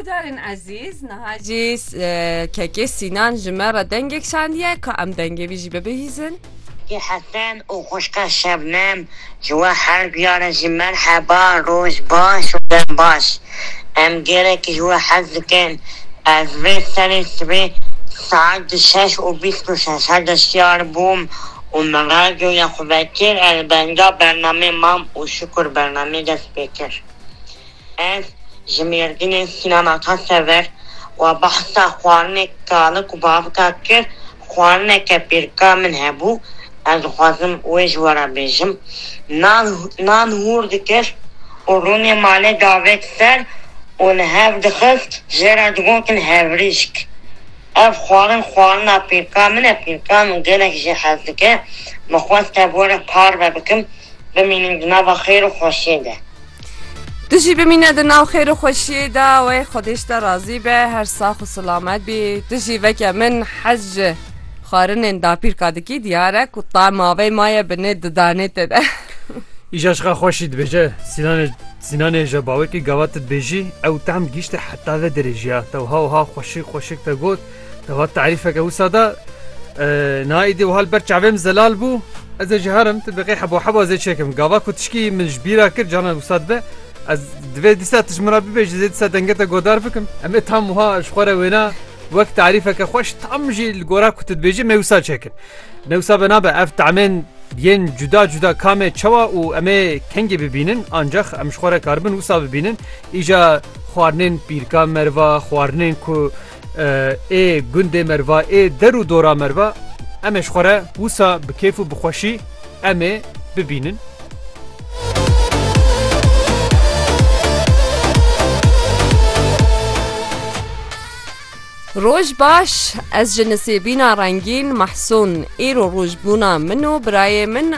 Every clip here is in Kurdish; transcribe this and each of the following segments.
Guhdarên ezîz, niha jî KK Sînan ji me re dengek şandiye, ka em dengê wî jî bibihîzin. Keke Hesen û xwişka Şebnem ji we her duyaran jî merheba, roj baş û dem baş. Em gelekî ji we hez dikin. Ez vê serê sibê saet du şeş û bîst û şeş her de şiyar bûm û min radyoya xwe vekir, ez li benga bernameyê mam û şikur bernameyê dest pê kir. Ez ji Mêrdînê sînema ka ser vir û behsa xwarinê kalik û bavika kir. Xwarineke pêrka min hebû. Ez dixwazim wê ji we re bêjim. Nan nan hûr dikir û rûnê malê davêt ser û li hev dixist jê re digotin hevrîşk. Ev xwarin xwarina pêrka min e. Pêrka min gelek jê hez dike. Min xwest tev were parve bikim bimînim di nava xêr û xweşiyê de. Tu jî bimîne di nav xêr û xweşiyê de wê xwedêş te razî be her sax û silamet bî tu jî veke min hez ji xwarinên dapîrka dikî diyar e ku tema vê maye bi nê didanê te de Îja ji xwe xweşî dibêje Sînanê Sînanê ji bawekî gavat dibêjî ew tam gihîşte heta vê derêjiya te wiha wiha xweşik xweşik te got Devat tarîfeke wisa da na îdî wiha li ber çavê min zelal bû ez ê ji herim tu biqê heba heba zê çêkim gava ku tişkî min ji bîra kir canan wisa dibe ez divê dîsa tu ji min re bibêjî zê dîsa denge te godar bikim em ê tam wiha ji xwe re wêna wek tarîfeke xweş tam jî li gora ku tu dibêjî me wisa çêkin me wisa be nabe ev tamên yên cuda cuda kamê çawa û em ê kengê bibînin ancax em ji xwe re karibin wisa bibînin îja xwarinên pîrka merva xwarinên ku Ê gundê merva ê der û dora merva em ê ji xwe re wisa bi kêf û bi xweşî em ê bibînin. Roj baş ez ji nisêbîna rengîn mehsûn îro roj bûna min û birayê min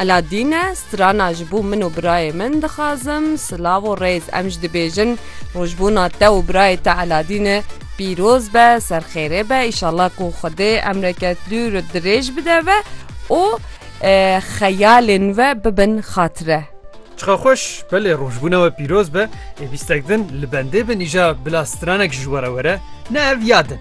Aladîn e Strana ji bo min û birayê min dixwazim. Silav û rêz em jî dibêjin rojbûna te û birayê te Eladîn e pîroz be, serxêrê be îşallah ku Xwedê emreke dûr û dirêj bide ve û xeyalên ve bibin xatire. Çiqa xweş, belê rojbûna we pîroz be, ê bîstek din li bendê bin îja bila stranek ji we re were, ne ev ya din.